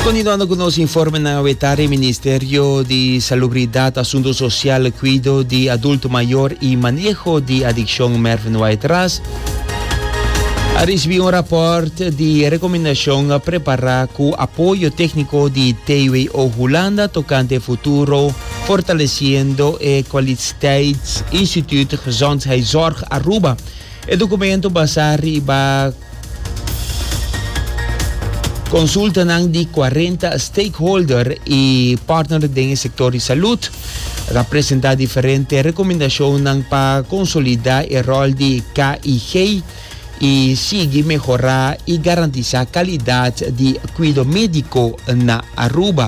Kontinuando ku nos informenan awe tarde Ministerio di Salubridad, Asunto Sosial, Kuido di Adulto Mayor i Maneho di Adikshon Mervin White Ras a risibi un rapòrt di rekomendashon prepará ku apoyo tékniko di TWO Hulanda tokante futuro fortalesiendo e kwaliteitsinstituut Gezondheidszorg Aruba E dokumento basá riba konsultanan di kuarenta stakeholder i partner den e sektor di salud. E ta presentá diferente rekomendashonnan pa konsolidá e ròl di KIG i sigui mehorá i garantisá kalidat di kuido médiko na Aruba.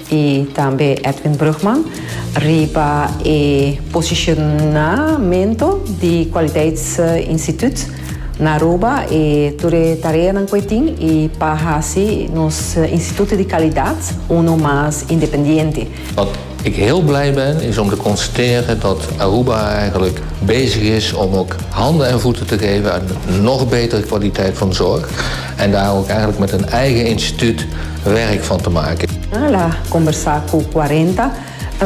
y tambe Edwin Brugman riba e posicionamento di Kwaliteitsinstituut na Aruba e tur e tareanan cu e tin y pa haci nos instituut di calidad uno mas independiente. Wat ik heel blij ben is om te constateren dat Aruba eigenlijk bezig is om ook handen en voeten te geven aan nog betere kwaliteit van zorg en daar ook eigenlijk met een eigen instituut Werk van te make. Al a combersa cu cuarenta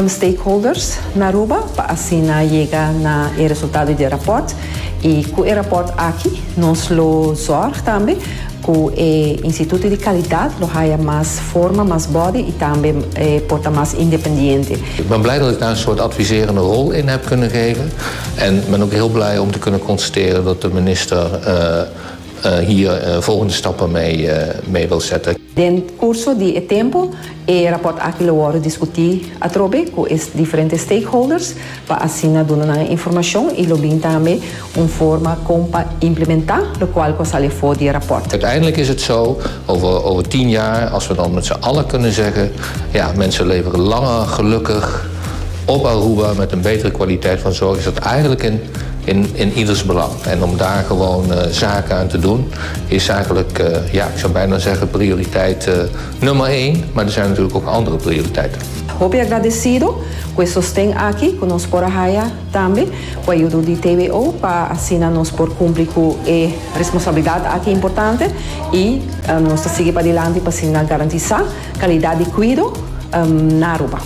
stakeholders na Aruba pa asina yega na e resultado di e rapport. Y cu e rapport aki nos lo zorg tambe cu e instituto di calidad lo haya mas forma, mas body y tambe por ta mas independiente. Ik ben blij dat ik daar een soort adviserende rol in heb kunnen geven en ben ook heel blij om te kunnen constateren dat de minister Hie e volgende stappen mi wil sette. Den curso di e tempo e rapport aki lo wordo discuti atrobe cu e diferente stakeholders pa asina duna nan informacion y lo bin tambe un forma con pa implementa locual cu a sali afo di e rapport. Uiteindelijk is het zo, over tien jaar, als we dan met z'n allen kunnen zeggen, ja, mensen leven langer gelukkig op Aruba met een betere kwaliteit van zorg, is dat eigenlijk een. En iders belang. En om daar gewoon zaken aan te doen is eigenlijk, ja, ik zou bijna zeggen prioriteit nummer één, maar er zijn natuurlijk ook andere prioriteiten. Hopi agradecido cu e sosten aki cu nos por a haya tambe cu ayudo di TWO pa asina nos por cumpli cu e responsabilidad aki importante y nos ta sigui padilanti pa asina garantisa calidad di cuido na Aruba.